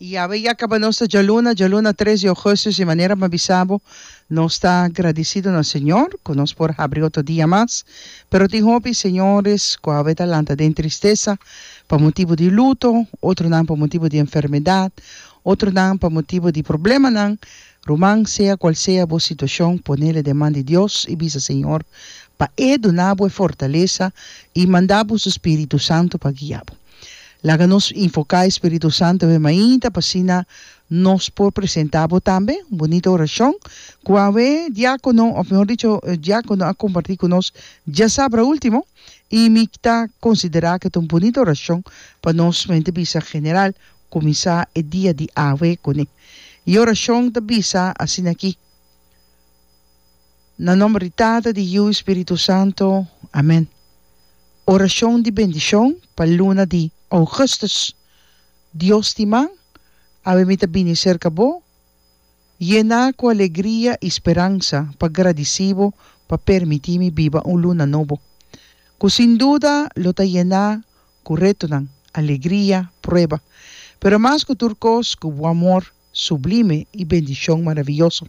Y awe ya caba nos ta djaluna, djaluna tres di augustus, di manera bo a bisa bo, nos ta gradicido na Señor cu nos por habri otro dia mas, pero tin hopi señores cu awe ta lanta den tristeza pa motibo di luto, otronan pa motibo di enfermedad, otronan pa motibo di problemanan, ruman sea cual sea bo situacion ponele den man di Dios y bisa Señor pa e duna bo e fortaleza y manda bo su spiritu santo pa guia bo. Laga nos invoká e Spiritu Santu awe mainta pa asina nos por presentá bo tambe un bunita orashon ku awe diákono òf mihor dicho e diákono a kompartí ku nos djasabra último i mi ta konsiderá ku e ta un bunita orashon pa nos mente bisa General kuminsá e dia di awe kuné. E orashon ta bisa asina aki. Na nomber di Tata, di Yiu i Spiritu Santo. Amen. Orashon di bendishon pa luna di Augustus, Dios tin man, awe mi ta bini serka bo, yená ku alegria i speransa pa gradisí bo pa permití mi biba un luna nobo, ku sin duda lo ta yená ku retonan, alegria, prueba, pero mas ku tur kos ku bo amor. Sublime i bendishon maravioso.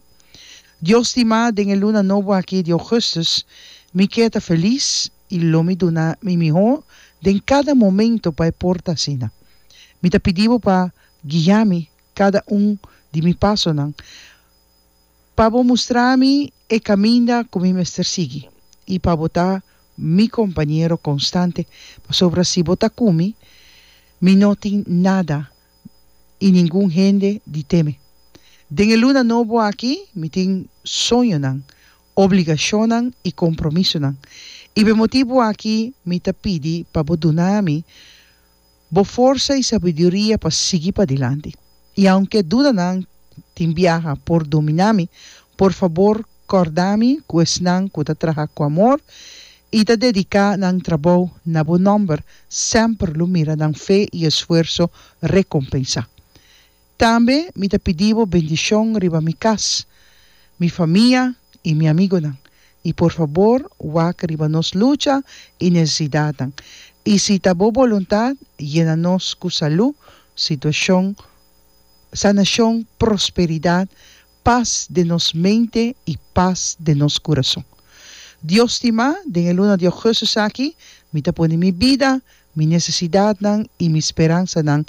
Dios stimá, den e luna nobo akí di Augustus, mi ke ta felis i lo mi duna mi mihó den kada momento pa e por ta asina. Mi ta pidi Bo pa guia mi kada un di mi pasonan, pa Bo mustra mi e kaminda ku mi mester sigui i pa Bo ta mi kompañero konstante, pasobra si Bo ta ku mi, mi no tin nada i ningun hende di teme. Den e luna nobo aki mi tin soñonan, obligashonnan i kompromisonan, i p'e motibu aki mi ta pidi pa bo duna mi bo forsa i sabiduria pa sigui padilanti. I aunke dudanan tin biaha por dominá mi, por fabor Corda mi cu esnan cu ta traha cu amor y ta dedica nan trabou na bo nomber semper lo mira nan fe y esfuerzo recompensa. Tambe mi ta pidi bo bendicion riba mi cas, mi famia y mi amigonan. Y por fabor wak riba nos lucha y necesidadnan. Y si ta bo boluntad yena nos cu salud, situacion, sanacion, prosperidad pas den nos mente i pas den nos kurason. Dios stimá, den e luna di Augustus aki, mi ta pone mi bida, mi nesesidatnan i mi speransanan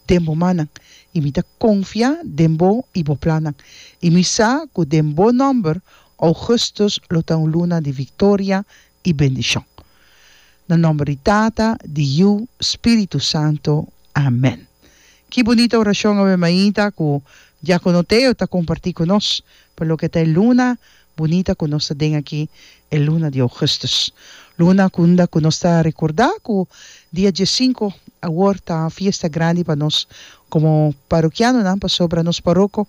den bo mannan, i mi ta konfiá den bo i bo plannan. I mi sa ku den bo nòmber, Augustus lo ta un luna di viktoria i bendishon. Na nomber di Tata, di Yu, Spiritu Santo. Amen. Ki bunita orashon awe mainta ku Diakono Teo ta komparti ku nos pa loke ta e luna bunita ku nos ta den aki, e luna di Ougustus. Luna kunda ku nos ta rekordá ku dia diesinku awor ta fiesta grandi pa nos komo parokianonan pasobra nos paroko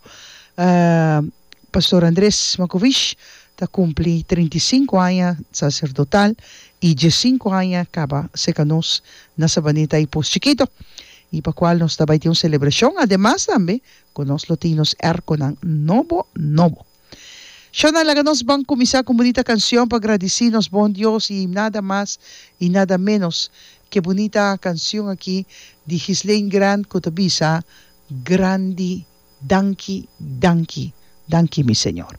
Pastor Andres Makovic ta kumpli trinta i sinku aña saserdotal i diesinku aña kaba seka nos na Sabaneta i Pos Chikito, i pa kual nos ta bai tin un selebrashon, ademas tambe ku nos lo tin nos èrkonan nobo nobo. Shona, laga nos ban kuminsá ku un bunita kanshon pa gradisí nos bon Dios, i nada mas i nada ménos ku e bunita kanshon aki di Ghislain Grant ku ta bisa, Grandi danki danki danki mi Señor